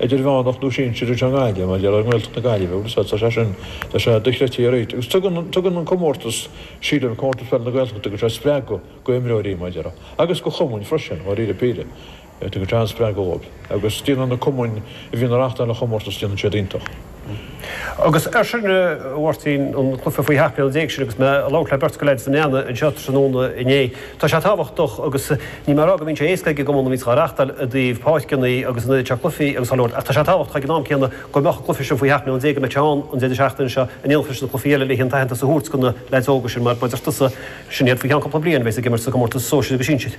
idirmheánach nó sinsir is ea an Ghaillimh, mar gheall ar Ghaeltacht na Gaillimhe agus tá sé sin, tá sé dochreidte i réitithe agus tugann, tugann an comórtas, sílim, Comórtas Pheil na Gaeltachta, tugann sé spreagadh do imreoirí, mar gheall ar, agus do chumainn freisin, dháiríre píre, tugann sé an-spreagadh dhóibh agus déanann na cumainn a bhíonn ag reáchtáil an chomórtas, déanann siad iontach. Agus ar ndóigh a Mháirtín an cluife faoi sheacht mbliana déag sin agus mé ag labhairt le beirt go leith de na leanaí anseo tráthnóna inné, tá sé tábhachtach agus níl mé ag rá go mbíonn sé éasca ag an gCumann a mbíonn sé á reachtáil i dtaobh páirceannaí agus an oiread seo cluifí agus á labhairt ach tá sé tábhachtach ag an am céanna go mbeadh an cluife sin faoi sheacht mbliana déag a mbeidh sé ann an deireadh seachtaine seo in éineacht leis na cluifí eile leis an aitheantas a thabhairt do na leaids óga sin mar, a deir tusa, sin iad faoi cheann cúpla bliain a bheas ag imirt sa gcomórtas sóisir agus sinsir.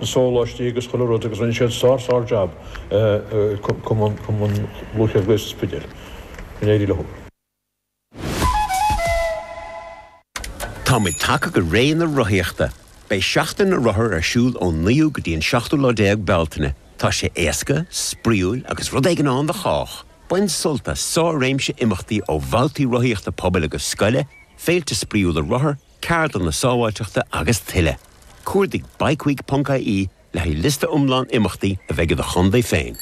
na sóláistí agus chuile rud agus rinne siad sár sár jab cumann lúthchleas Gael sa Spidéal. Go n-éirí leo. Táimid tagtha go ré na rothaíochta. Beidh Seachtain na Rothar ar siúl ón 9ú go dtí an 7ú lá déag Bealtaine. Tá sé éasca, spraíúil agus rud éigin ann do chách! Bain sult as sár-réimse imeachtaí ó bhabhtaí rothaíochta pobail agus scoile, féilte spraíúla rothar, ceardlanna sábháilteachta agus tuilleadh. Cuardaigh bikeweek.ie le haghaidh liosta iomlán imeachtaí a bheidh i do chontae féin.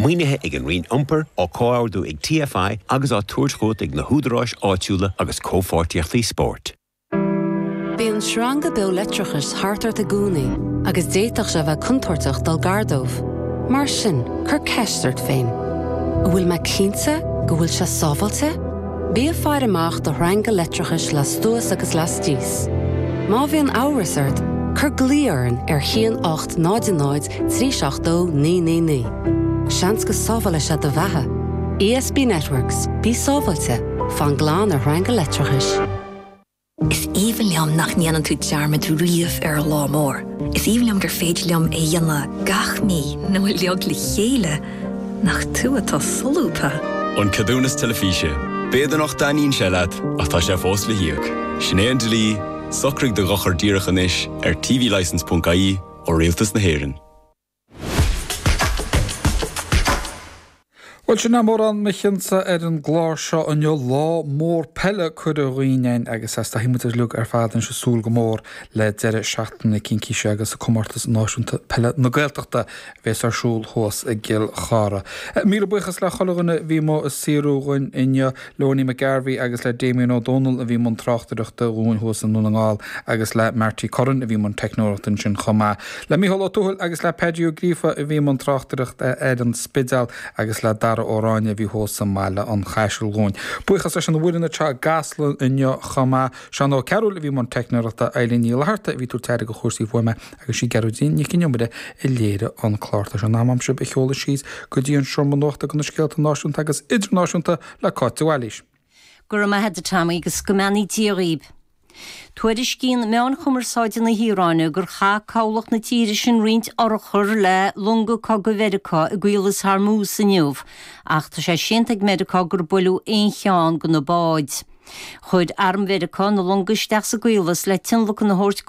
Maoinithe ag an Roinn Iompair, á comhordú ag TFI agus á tabhairt chugat ag na húdaráis áitiúla agus Comhpháirtíochtaí Spóirt. Bíonn sreanga beo leictreachais thart ort i gcónaí agus d'fhéadfadh sé a bheith contúirteach dul gar dóibh. Mar sin, cuir ceist ort féin, An bhfuil mé cinnte go bhfuil sé sábháilte? Bí ag faire amach do shreanga leictreachais lastuas agus laistíos. Má bhíonn amhras ort, cuir glao orainn ar 1800 372 999. Seans go sábhálfaidh sé do bheatha. ESB Networks, bí sábháilte, fan glan ar shreanga leictreachais. Is aoibhinn liom nach ndéanann tú dearmad riamh ar an lá mór. Is aoibhinn liom gur féidir liom é a dhéanamh gach mí nó uilig le chéile. Nach tú atá solúbtha! An Ceadúnas Teilifíse, B'fhéidir nach dtaitníonn sé leat ach tá sé fós le híoc. Sin é an dlí, socraigh do dhochar díreach anois ar tvlicense.ie ó Rialtas na hÉireann. Bhuel, sin é mórán mo chion-sa ar an gclár seo inniu, lá mór peile curtha dhínn fhéin agus a's tá muid uilig ar fad anois ag súil go mór le deireadh seachtaine na Cincíse agus Comórtas Náisiúnta Peile na Gaeltachta a bheas ar siúl thuas i gCill Chartha. Míle buíochas le chuile dhuine a bhí ag saothrú dhúinn inniu. Le Ownie McGarvey agus le Damien Ó Dónaill a bhí i mbun tráchtaireachta dhúinn thuas i nDún na nGall agus le Marty Curran a bhí i mbun teicneoireachta ansin chomh maith. Le Micheál Ó Tuathail agus le Paidí Ó Gríofa a bhí i mbun tráchtaireachta ar an Spidéal agus le Dara Ó Ráinne a bhí thuas i mBaile an Chaisil dhúinn. Buíochas leis an bhfoireann atá i gCasla inniu chomh maith, Seán Ó Cearúil a bhí i mbun teicneoireachta, Eileen Ní Fhlatharta a bhí ag tabhairt aire do chúrsaí fuaime, agus sí Gearóidín Nic an Iomaire a léirigh an clár. Tá sé in am a'm sibh a sheoladh síos go dtí an seomra nuachta gona scéalta náisiúnta agus idirnáisiúnta le Cáit de Bhailís. Go raibh maith agat, a Tommy, agus go mbeannaí Dia dhaoibh. Tuairiscíonn meáin chumarsáide na hIaráine gur chaith cabhlach na tíre sin roinnt urchar le longa cogaidh Mheiriceá i gCaolas Hormuz inniu, ach tá sé séanta ag Meiriceá gur buaileadh aon cheann de na báid. Chuir Arm Mheiriceá na longa isteach sa gCaolas le tionlacan a thabhairt go.